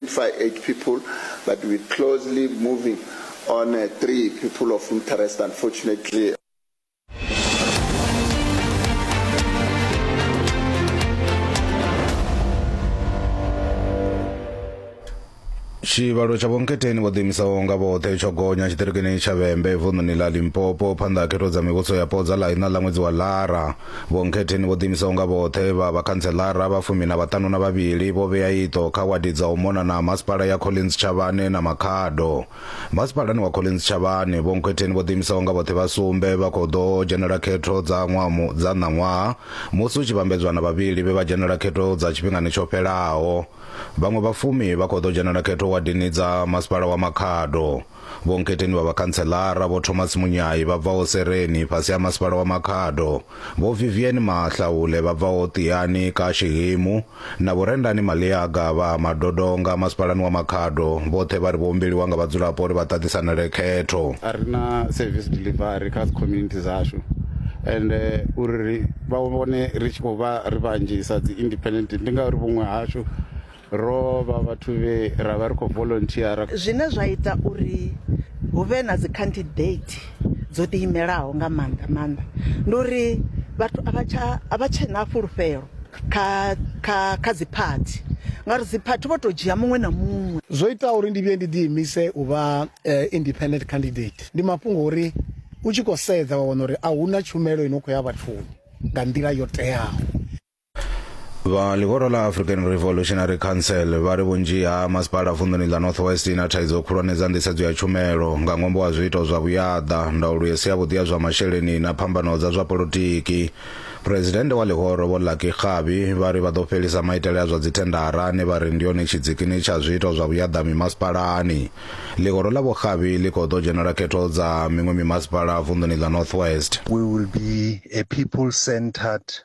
Five eight people but we closely moving on uh, three people of interest unfortunately. tshivhalo tsha vhonketheni vho ḓiimisaho nga vhoṱhe tsho gonya tshiṱirikini tsha vhembe vunḓuni ḽa limpopo phanḓa ha khetho dza mivhuso yapo dza ḽa iṋa ḽa ṅwedzi wa lara Vho Nkhetheni vho ḓiimisaho nga vhoṱhe vha vhakhantseḽara vha fumi na vhaṱanu na vhavhili vho vhea iṱo kha wadi dza u mona na ha masipala ya Collins Tshavhane na Makhado. Masipalani wa Collins Tshavhane, Vho Nkhetheni vho ḓiimisaho nga vhoṱhe vha sumbe vha khou ḓo dzhenela khetho dza ṅwaha mu, dza ṋaṅwaha musi hu tshi vhambedzwa na vhavhili vhe vha dzhenela khetho dza tshifhingani tsho fhelaho. Vhaṅwe vha fumi vha khou ḓo dzhenela khetho wadini dza masipala wa Makhado. Vho Nketeni vha vhakhanseḽara, Vho Thomas Munyai vha bvaho Sereni fhasi ha Masipala wa Makhado, Vho Vivian Mahlaule vha bvaho Ṱiyani ka Xihimu na Vho Rendani Maliaga vha ha Madodonga Masipalani wa Makhado vhoṱhe vha ri vho humbeliwa nga vhadzulapo uri vha ṱaṱisanele khetho. A ri na service delivery kha dzi community dzashu ende uri vha vhone ri tshi khou vha ri vhanzhisa dzi independent ndi ngauri vhuṅwe hashu Ro vha vhathu vhe ra vha ri khou volonthiyara. Zwine zwa ita uri hu vhe na dzi khandidethi dzo ḓiimelaho nga maanḓa maanḓa ndi uri vhathu a vha tsha a vha tshe na fhulufhelo kha kha kha dziphathi ngauri dziphathi vho tou dzhia muṅwe na muṅwe. Zwo itaho uri ndi vhuye ndi ḓiimise u vha independent candidate ndi mafhungo a uri u tshi khou sedza wa wana uri a hu na tshumelo i no khou ya vhathuni nga nḓila yo teaho. vha ḽihoro ḽa african revolutionary council vha ri vhunzhi ha masipala vunḓuni ḽa north west ina thaidzo khulwane dza nḓisedzo ya tshumelo nga ṅwambo wa zwiito zwa vhuyaḓa ndaulo i si yavhuḓi ya zwa masheleni na phambano dza zwa polotiki phuresidennde wa ḽihoro vho lucky kgabi vha ri vha ḓo fhelisa maitele a zwa dzithendara ane vha ri ndi yone tshidzikini tsha zwiito zwa vhuyaḓa mimasipalani ḽihoro ḽa vhokgabi ḽi khou ḓo dzhenela khetho dza miṅwe mimasipala vunḓuni ḽa north west We will be a people centered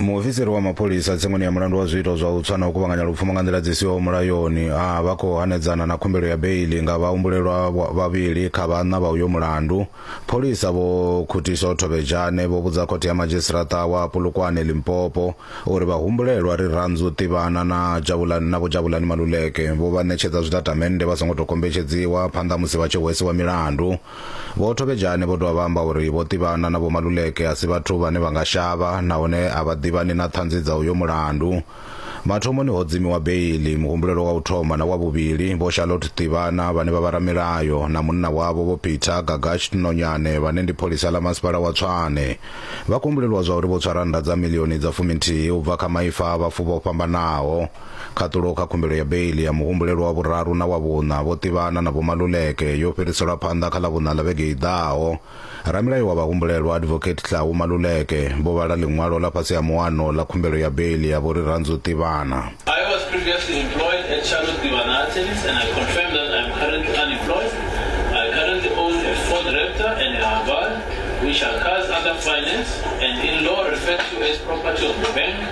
Muofisiri wa mapholisa tsengoni ya mulandu wa zwiito zwa u tswa na u kuvhanganya lupfumo nga nḓila dzi siho mulayoni a vha khou hanedzana na khumbelo ya beiḽi nga vhahumbulelwa vhavhili kha vhaṋa vha uyo mulandu. Pholisa Vho Khutiso Thobejane vho vhudza khothe ya madzhisiṱaraṱa wa Polokwane, Limpopo, uri vhahumbulelwa Rirhandzu Tivhana na Jabulani na Vho Jabulani Maluleke vho vha ṋetshedza zwitatamennde vha songo tou kombetshedziwa phanḓa ha musi vha tshi hwesiwa milandu. Vho Thobejane vho dovha vha amba uri Vho Tivhana na Vho Maluleke a si vhathu vhane vha nga shavha nahone a vha ḓivhani na ṱhanzi dza uyo mulandu. Mathomoni ho dzimiwa beiḽi, muhumbulelwa wa u thoma na wa vhuvhili, Vho Charlotte Tivhana vhane vha vha ramilayo na munna wavho Vho Peter Gagash Nonyane vhane ndi pholisa ḽa Masipala wa Tshwane, vha kumbulelwa zwa uri vho tswa rannda dza miḽioni dza fuminthihi u bva kha maipfa a vhafu vho fhambanaho. Khaṱulo kha khumbelo ya beiḽi ya muhumbulelwa wa vhuraru na wa vhuṋa vho ṱivhana na Vho Maluleke yo fhiriselwa phanḓa kha Ḽavhuṋa ḽa vhege i ḓaho. Ramilayo wa vhahumbulelwa, Advocate Tlhahu Maluleke, vho vhala ḽiṅwalo ḽa fhasi ha muano ḽa khumbelo ya beiḽi ya Vho Rirhandzu Ṱivhana. I was previously employed at Charlotte Tivana Attorneys and I confirm that I am currently unemployed. I currently own a Ford Raptor and a Haval which are cars under finance and in law referred to as property of the bank.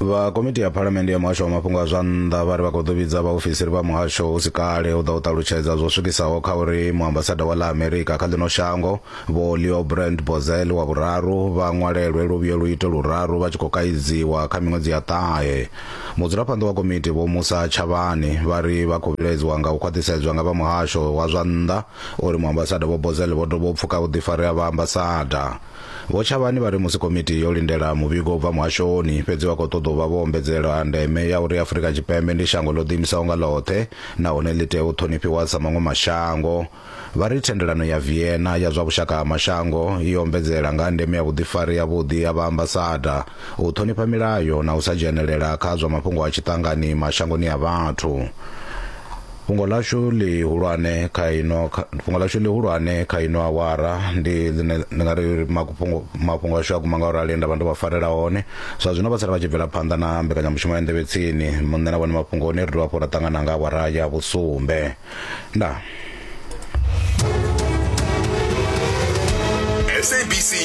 vha komiti ya phalamende ya muhasho wa mafhungo a zwa nnḓa vha ri vha khou ḓo vhidza vhaofisiri vha muhasho hu si kale u ḓa u ṱalutshedza zwo swikisaho kha uri muambasada wa ḽa amerika kha ḽino shango vho leo brand bozel wa vhuraru vha ṅwalelwe luvhiyo lu ite luraru vha tshi khou kaidziwa kha miṅwedzi ya ṱahe mudzulaphanḓa wa komiti vho musa tshavhani vha ri vha khou vhilaedziwa nga u khwaṱhisedzwa nga vha muhasho wa zwa nnḓa uri muambasada vho bozel vho dovha u pfuka vhuḓifari ha vha ambasada Vho Tshavhani vha ri musi komiti yo lindela muvhigo u bva muhashoni, fhedzi vha khou ṱoḓa u vha vho ombedzela ha ndeme ya uri Afrika Tshipembe ndi shango ḽo ḓiimisaho nga ḽoṱhe nahone ḽi tea u ṱhonifhiwa sa maṅwe mashango. Vha ri thendelano ya Vienna ya zwa vhushaka ha mashango i ombedzela nga ha ndeme ya vhuḓifari havhuḓi ha vhaambasada, u ṱhonifha milayo na u sa dzhenelela kha zwa mafhungo a tshiṱangani mashangoni a vhathu. Fhungo ḽashu ḽihulwane kha ino fhungo ḽashu ḽihulwane kha ino awara ndi ḽine ndi nga ri mafhungo mafhungo ashu a guma nga u rali nda vha ndo vha farela hone zwa zwino vha sala vha tshi bvela phanḓa na mbekanyamushumo ya nḓevhe tsini muṋe na vhone mafhungoni ri dovha hafhu ra ṱangana nga awara ya vhusumbe nda